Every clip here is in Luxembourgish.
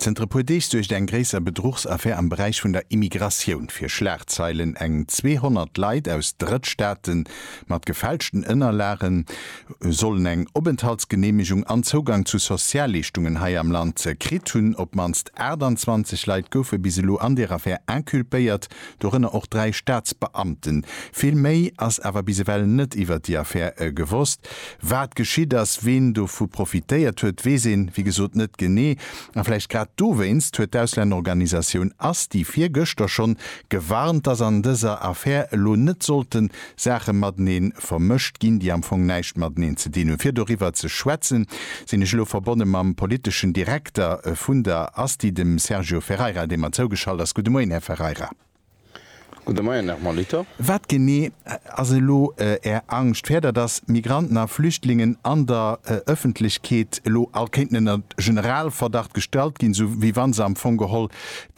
Zënter e puer Deeg suergt eng gréisser Bedruchsaffär am Beräich vun der Immigratioun fir Schlagzeilen. Eng 200 Leit aus Drëttstaate mat gefälschten Ënnerlage sollen eng Openthaltsgeneemegung an Zougang zu Sozialleeschtungen hei am Land kritt hunn. Op d'mannst 28 Leit goufe bis elo an der Affär inculpéiert. dorënner och dräi Staatsbeamten. Vill méi ass awer bis ewell net iwwert déi Affär gewosst. Wat geschitt ass, ween dovu profitéiert huet, weess een, wéi gesot, net genee. A vläicht grad dowéinst huet d'Auslännerorganisatioun asti virgëschter schonn gewarnt, dass an dëser Affär elo net sollten Saache mateneen vermëscht ginn, déi am Fong näischt mateneen ze dinn hunn. Fir doriwwer ze schwätzen, sinn ech elo verbonne mam politeschen Direkter vun der ASTI, dem Sergio Ferreira, dee mer zougeschalt ass. Gudde Moien, Här Ferreira. Gudde Moien, Här Molitor. Wat genee ass elo Är Angscht? Fäert Der, datt Migranten a Flüchtlingen an der Ëffentlechkeet elo all kéinten ënner Generalverdacht gestallt ginn, esou wéi wa se am Fong geholl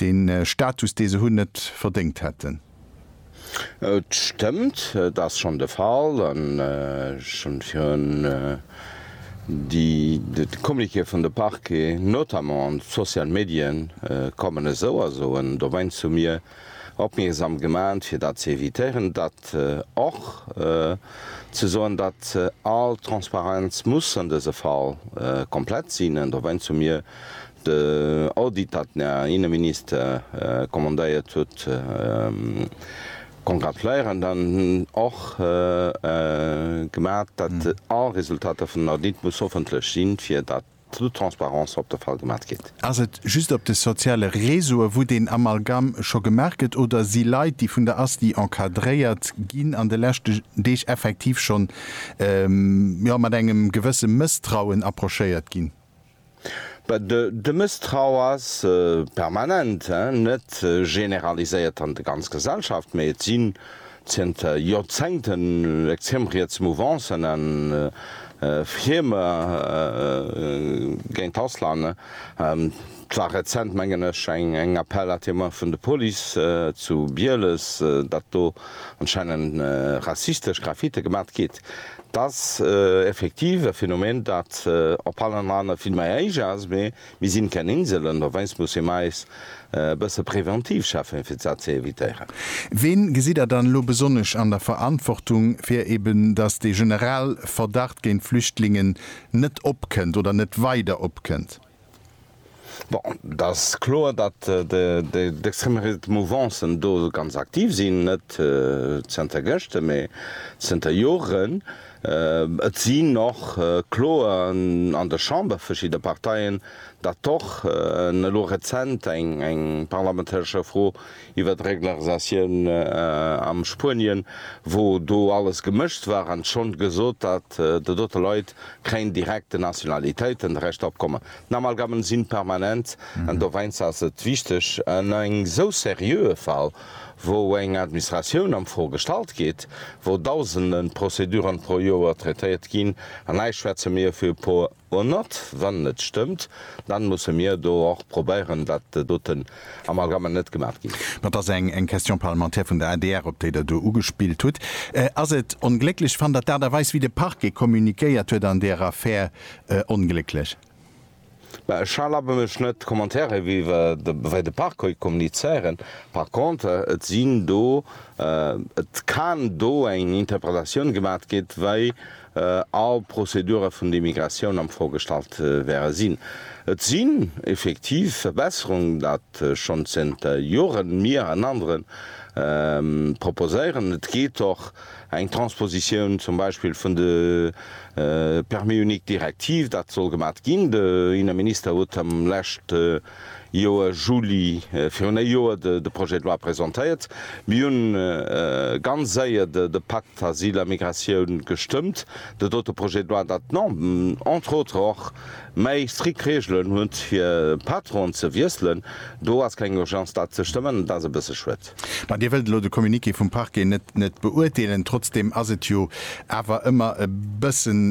dee Status, dee se hunn, net verdéngt hätten? Et stëmmt, et ass schonn de Fall an ech hunn virun de Communiqué vun de Parquet, notamment an d'Social Medien kommen esou a soen dowéinst hu mir opmierksam gemaat fir dat ze évitéieren, datt och ze soen, datt all Transparenz muss an dëse Fall komplett sinn an dowéinst hu mir De Audit dat den Här Inneminister commandéiert huet, congratuléieren dann och gemat, dat all Resultater vun den Audite muss hoffentlech sinn, fir dat toute transparence op de Fall gemat gétt. Ass et just op de soziale Réseaue wou deen Amalgame scho gemaach gëtt oder si Leit déi vun der ASTI encadréiert ginn an de leschte Deeg effektiv schonn jo mat engem gewësse Mësstrauen approchéiert ginn? De Mësstrauch ass permanent, net generaliséiert an de ganz Gesellschaft, mee et sinn zënter Joerzéngten extrem riets Mouvancen a Firme géint Ausland. Et war rezent, mengen ech, eng Appel à témoins vun de Police zu Bieles, datt do anscheinend rassistesch Graffite gemat gi. Et ass effektiv e Phänomen, dat op allen Ranger vill mei héich ass, mee mir sinn keng Inselen, dowéinst musse mer eis e bësse präventiv schaffen, fir dat ze evitéieren. Ween gesitt Der dann elo besonnesch an der Verantwortung, fir eben, dass dee Generalverdacht géint Flüchtlingen net opkënnt oder net weider opkënnt? Bon, et ass kloer, datt d'extreme-riet Mouvancen do ganz aktiv sinn, net zënter gëschte mee zënter Joren. Et sinn och Kloen an der Chamber verschidde Parteien, datt och elo rezent eng parlamentaresche Fro iwwer d'Reglarisatioun am Spuenien, wou do alles gemëscht war, an schonn gesot, datt de dote Leit keng direkte Nationalitéiten de Recht opkommen. D'Amalgammen sinn permanent, an doweinst ass et wichteg an engem esou seriöe Fall, wou eng Administratioun am Fro gestallt gétt, wou dausenden Prozeduren pro Joer traitéiert ginn, an hei schwätze mir fir e puer. Or not, wann et stëmmt, dann musse mir do och probéieren, dat doten Amalgame net gemaat ginn. Mä et ass eng Question parlementaire vun der adr, op déi Der do ugespillt hutt. Ass et onglécklech? Fannt Der d'Aart a Weis, wéi de Parquet communiquéiert huet an där Affär, onglécklech? Mä ech erlabe mech net, Commentairen wéi de Parquet kommunizéieren. Par contre, et sinn do, et kann do eng Interpretatioun gemaat ginn, wéi all Prozedure vun de Migratioun am vorgestallt wäre sinn. Et sinn effektiv Verbesserungen, dat schonn zënter Joren mir an anere proposéieren. Et geet och eng Transpositioun zum Beispill vun de Permis unique Direktiv, dat soll gemat ginn. De Inneminister huet am leschte. Joer, Juli, virun e Joer de Projet de loi presentéiert. Mir hunn ganz séier de Pacte Asyl a Migratioun gestëmmt, de dote Projet de loi, dat non, entre autres och méi strikt Reegelen huet, fir Patronen ze wiesselen. Do ass keng Urgence, dat ze stëmmen, an dat ass e bësse schued. Mä Dir wëllt elo de Communiqué vum Parquet net beurteelen. Trotzdeem ass et jo awer ëmmer e bëssen,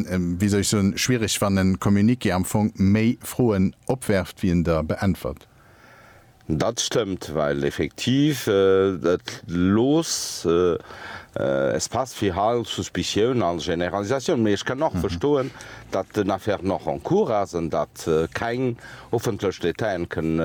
wéi soll ech soen, schwierig, wann e Communiqué am Fong méi Froen opwerft, wéi en der beäntwert. Dat stëmmt, well effektiv et looss Espace fir all Suspicioun, all Generalisatioun. Mee ech kann och verstoen, datt den Affaire nach en cours ass an datt keng Hoffentlech, d'Détaillen kënnen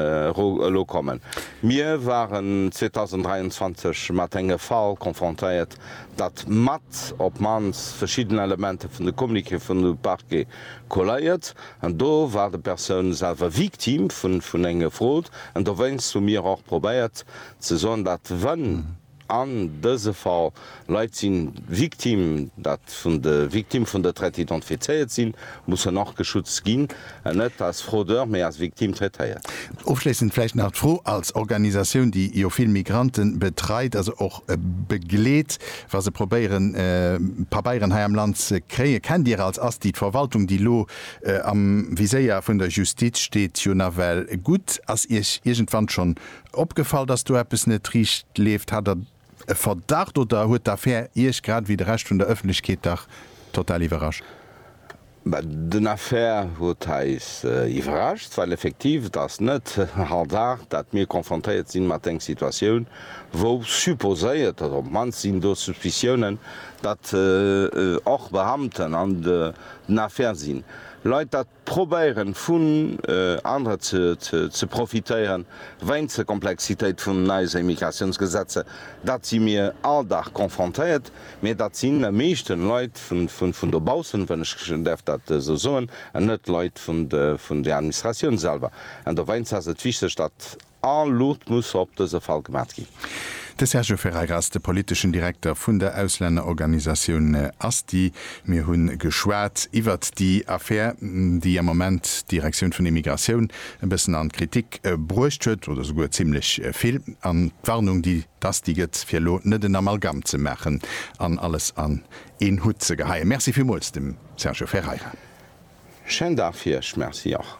elo kommen. Mir waren 2023 mat engem Fall confrontéiert, datt mat op d'mannst verschidden Elementen vun de Communiqué vun de Parquet colléiert. An do war de Persoun selwer Victime vun enger Fraude. An dowéinst hu mir och probéiert ze soen, datt wann. An dëse Fall, Leit si Victime, dat vun de Victime vun der Traite identifizéiert sinn, mussen och geschützt ginn an net als Fraudeur, mee als Victime traitéiert. Ofschléissend vläicht nach d'Fro, als Organisatioun, déi jo vill Migrante betreit, also och begleet, wa se probéieren, Pabeieren hei am Land ze kréien, Kennt Dir als Asti d'Verwaltung, déi elo am Viséier vun der Justiz steet, jo nawell gutt? Ass Iech iergendwann schonn Opgefall, dass do eppes net riicht leeft? Hat Der e Verdacht oder huet d'Affär Iech, grad ewéi de Rescht vun der Ëffentlechkeet, dach total iwwerrascht? Bah, den Affaire huet eis iwwerrascht, well effektiv et ass net all Dag, dat mir konfrontéiert sinn mat eng Situatioun, wou supposéiert, oder op d'mannst sinn do Suspiciounen, datt och Beamten an den Affaire sinn. Leit dat? Probéieren vun anere ze profitéieren, weinst der Komplexitéit vun eise Immigratiounsgesetzer, dat si mir all Dag confrontéiert, mee dat sinn am meeschten Leit vun dobaussen, wann ech däerf dat esou soen, an net Leit vun der Administratioun selwer. An doweinst ass et wichteg, dat All Luucht muss op dëse Fall gemat ginn. De Sergio Ferreira ass de politeschen Direkter vun der Auslännerorganisatioun Asti. Mir hu geschwat iwwert déi Affär, déi am Moment d'Direktioun vun Immigratioun e bëssen an d'Kritik bruecht huet, oder souguer zimmlech vill, an d'Warnung, déi d'Asti gëtt, fir elo net en Amalgamm ze maachen an alles an een Hutt ze geheien. Merci villmools dem Sergio Ferreira. Schäin Dag fir Iech. Merci och.